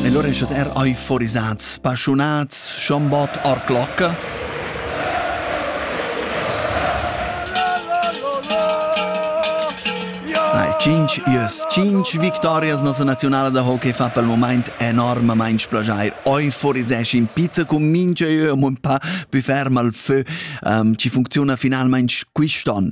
E lur eschet er euforisats, paschunats, schombot or clocca. Cinc ies, cinc victorias nossa nazionala da hockey fa pel moment enormamaing splajair. Euforisesci in pizza cum mincha eu am un pa plü ferm al fö. Um, ci funcziuna finalmaing quist'on.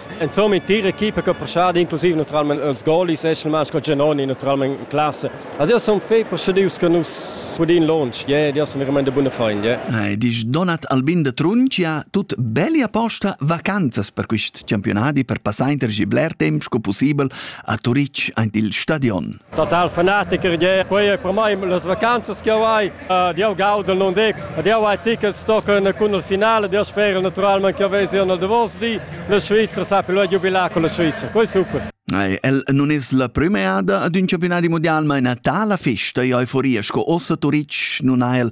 Insomma, in tir equipa che prestava inclusive naturalmente els goalis è il sco Genoni naturalmente in classe. Also io sono fei procedius che nus sudin launch, yeah, io sono veramente de buona fein, yeah. Eh, disch Donat Albin de Truncia, tut belli apposta vacanzas per quist campionadi per passar inter bler temp sco possibel a Turic aint il stadion. total fanatiker je quei è per mai las vacanzas che ho hai uh, dio gaudel non dic dio hai tickets tochen cun il finale dio spero naturalmente che vesi nel davos di la Svizzera sa più giubilà con la Svizzera poi super El non es la prümeada ad ün campionadi mundial, ma ina tala festa e euforia sco ossa Turitg non ha el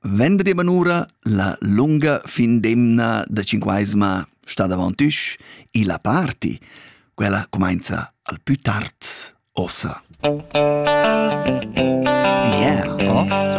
Vendredi manura la lunga fin d'emna da cinquaisma sta davant üsch e la party, quella cumainza al pü tard ossa. Yeah, oh?